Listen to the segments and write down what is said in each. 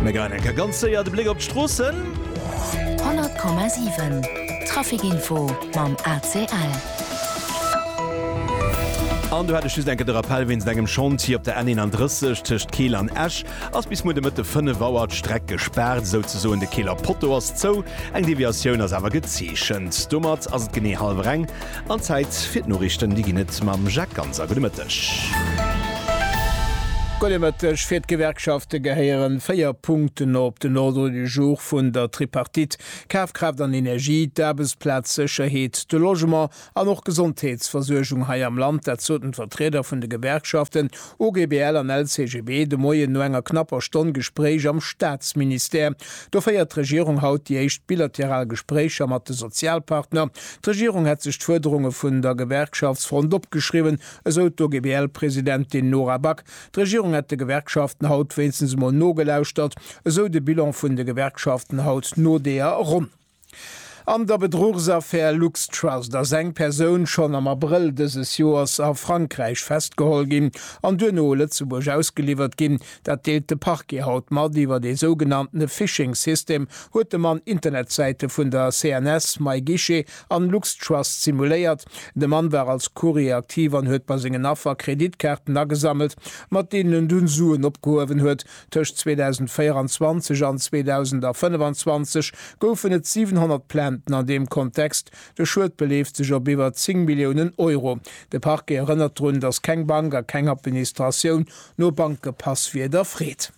Mir geien eng Kéier ganz séier de Bléck op d'Stroossen. 100,7 Trafikinfo mam ACL. An do hätt ech just eng Kéier de Rappell wéinst engem Chantier op der N31 tëscht Keel an Esch ass bis muer de Mëtte 5 Auer d'Streck gespaart, esouzesoen de Keeler Potto ass zou, eng Deviatioun ass awer gezeechent. Domat ass et genee hallwer eng An Zäit fir d'Noriichten, déi ginn et mam Jacques Ganser. Gudde Mëtteg. Gudde Mëtteg. Fir d'Gewerkschafte gehéieren véier Punkten op den Ordre du jour vun der Tripartite, Kafkraaft an Energie, d'Aarbechtsplazsécherheet, de Logement an och d'Gesondheetsversuergung hei am Land. Dat soten d'Vertrieder vun de Gewerkschaften OGBL an LCGB de Moien no enger knapper Stonn Gespréich am Staatsministère. Do féiert d'Regierung haut déi éischt bilateral Gespréicher mat de Sozialpartner. D'Regierung hätt sech d'Fuerderunge vun der Gewerkschaftsfront opgeschriwwen, esou d'OGBL-Presidentin Nora Back. D'Regierung hätt de Gewerkschaften haut wéinstens emol nogelauschtert, esou de Bilan vun de Gewerkschaften haut no deeër Ronn. An der Bedruchsaffär LuxTrust ass eng Persoun schonn am Abrëll dëses Joers a Frankräich festgeholl ginn an duerno u Lëtzebuerg ausgeliwwert ginn. Dat deelt de Parquet haut mat. Iwwert ee sougenanntene Phishing System huet de Mann Internetsäite vun der CNS, MyGuichet an LuxTrust simuléiert. De Mann war als Courrier aktiv an huet bei sengen Affer Kreditkaarten agesammelt, mat deenen en dunn Suen opgehuewen huet. Tëscht 2024 an 2025 goufen et 700 Plainten an deem Kontext. De Schued beleeft sech op iwwer 10 Milliounen Euro. De Parquet erënnert drun, datt keng Bank a keng Administratioun No Bankepass wier der Freed.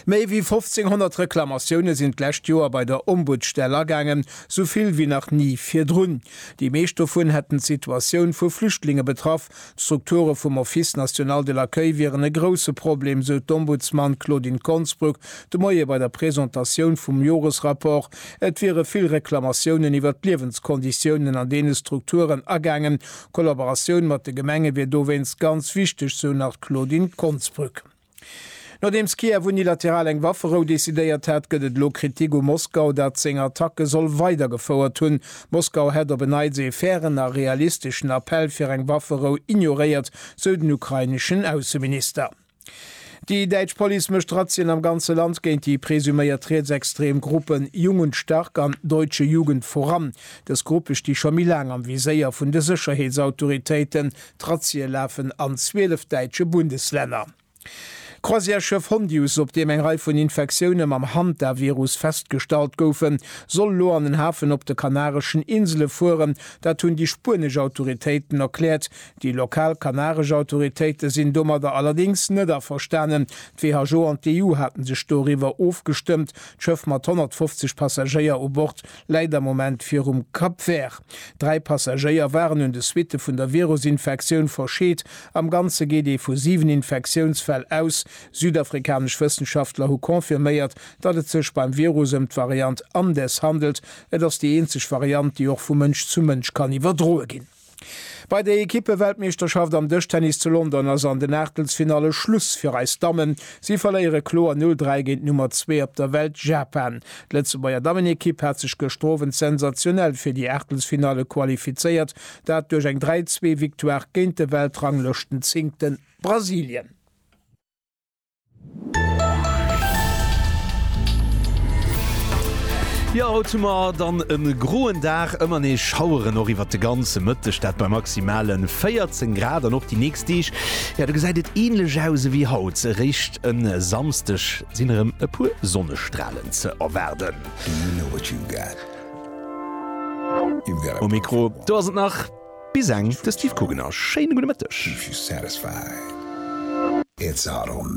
Méi wéi 1.500 Reklamatioune sinn d'lescht Joer bei der Ombudsstell agaangen, sou vill wéi nach ni virdrun. Déi meescht dovun hätten d'Situatioun vu Flüchtlinge betraff. D'Strukture vum Office national de l'accueil wieren e grousse Problem, sou d'Ombudsman Claudine Konsbruck de Moie bei der Presentatioun vum Joresrapport. Et wiere vill Reklamatiounen iwwert d'Liewenskonditiounen an deene Strukturen agaangen. D'Kollaboratioun mat de Gemenge wier dowéinst ganz wichteg, sou nach d'Claudine Konsbrück. Nodeems Kiew unilateral eng Wafferou decidéiert hat, gëtt et elo Kritik u Moskau, dat seng Attacke soll weidergefouert hunn. Moskau hätt op en Neits ee fairen a realisteschen Appell fir eng Wafferou ignoréiert, sou den ukraineschen Ausseminister. Déi däitsch Police mécht Razzien am ganze Land géint déi presuméiert rietsextrem Gruppen Jung und Stark an Deutsche Jugend voran. Dës Gruppe sti scho méi laang am Viséier vun de Sécherheetsautoritéiten. D'Razzie lafen an 12 däitsche Bundeslänner. D'Croisièreschëff Hondius, op deem eng Rei vun Infektioune mam Hantavirus festgestallt goufen, soll elo an en Hafen op de Kanareschen Insele fueren. Dat hunn déi spuenesch Autoritéiten erkläert. Déi lokal kanaresch Autoritéite sinn domadder allerdéngs net averstanen. D'WHO an d'EU hate sech doriwwer ofgestëmmt. D'Schëff mat 150 Passagéier u Bord läit am Moment virum Cap Vert. Dräi Passagéier waren un de Suitte vun der Virusinfektioun verscheet. Am Ganze geet ee vu siwen Infektiounsfäll aus. Südafrikanesch Wëssenschaftler hu confirméiert, datt et sech beim Virus ëm d'Variant Andes handelt. Et ass déi eenzeg Variant, déi och vu Mënsch zu Mënsch kann iwwerdroe ginn. Bei der Ekippe-Weltmeeschterschaft am Dëschtennis zu London ass an den Aachtelsfinalle Schluss fir eis Dammen. Si verléiere kloer 0, 3 géint d'Nummer zwee op der Welt, Japan. D'Lëtzebuerger Dammenekipp hat sech gëschter Owend sensationell fir déi Aachtelsfinalle qualifizéiert, dat duerch eng 3, 2 Victoire géint de Weltranglëschtenzéngte Brasilien. Jo, haut hu mer dann e groen Dag, ëmmer nees Schaueren och iwwert de ganze Mëtteg, dat bei maximale 14 Grad. An och déi nächst Deeg, jo, do gesäit et änlech aus ewéi haut. Eréischt e Samsdeg sinn erëm e puer Sonnestralen ze erwaarden. Um Mikro do ass et nach bis eng de Steve Kugener. Schéine gudde Mëtteg.